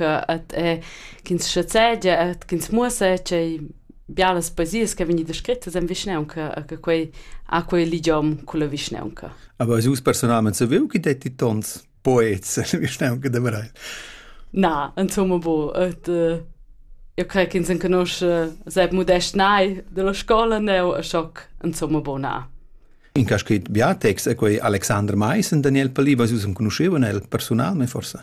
et e ch'ins schazegia et ch'ins muossa tgei bialas poesias che vegni descrittas en vischnaunca a che quei a quei ligiom culla vischnaunca. Aber also personalment savevo che detti tons poets en vischnaunca da Breil. Na, insomma bo, et uh, io crei che ins enconosce seb modest nai della scola ne o a shock, insomma bo na. In cas scrit bia text e quei Alexander Mais en Daniel Paliva, si usen conoscevan el personalmente forse.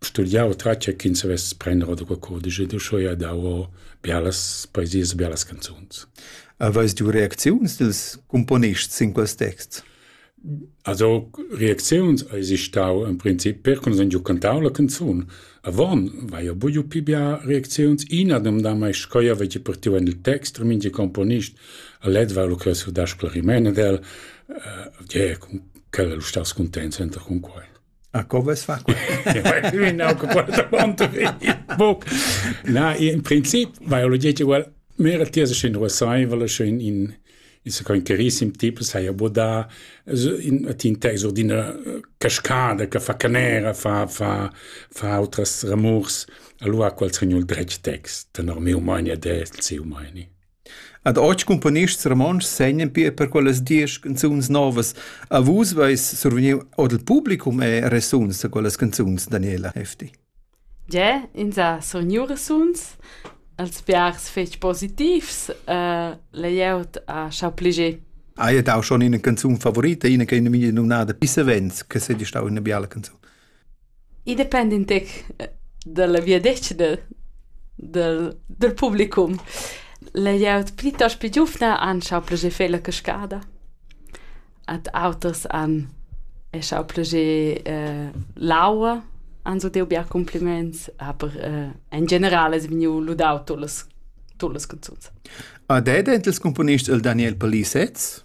Studià otratg ch'ins savess prender ora quei cudisch ed uschè ha dau bialas poesias e bialas canzuns. Aveis ti reacziuns dils cumponists sin quels texts? Also reacziuns eisi stau en princip per con sun giu cantau la canzun. Avon vai jeu buiu pi bia reacziuns. Ina domda mai schoi avegi partiu en il text, er mingi componist a led va lu cheu su dar sclariment ed el, uh, eh, yeah, quel lu stas cuntents enta cun quei. A co ves fa? Na, in princip biologia egual mera tiesa sche ruasaiva sche in in il sa con carissim tipo saja bodà in tin tex or d'ina cascada che fa canera fa fa fa outras ramurs allora quals regnul dretg tex tenor meu mania del seu mania Ad otg cumponists romontschs segnan pia per quellas diesch canzuns novas. A vus veis survegniu ord il publicum e resuns a quellas canzuns, Daniela Hefti. Ge, ins ha survegniu resuns. Els biars fetg positivs. Uh, layout ha schau pliger. Hai dau schon ina canzun favorita, ina che ina mia numnada Pissavens, che sei stau ina biala canzun. I dependa in tec dalla viadetgna dal dal dal publicum. La glieud plitost pli giuvna han schau plascher fer la cascada. Ad auters han è schau plascher l'aua, han so deu bia cumpliments, aber in general es vegniu ludau tut las tut las canzuns. A dad els componist il Daniel Palissetz?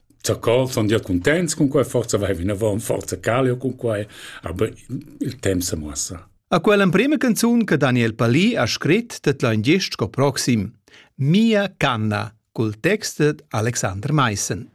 Zacòls sun gia cuntents cun quai, forsa vai vinavant, forsa calo cun quai, aber il temp sa muossa. A quell'emprema canzun che Daniel Palì ha scrit det l'ha in gest sco proxim. Mia canna cul text d'Alexander Maissen.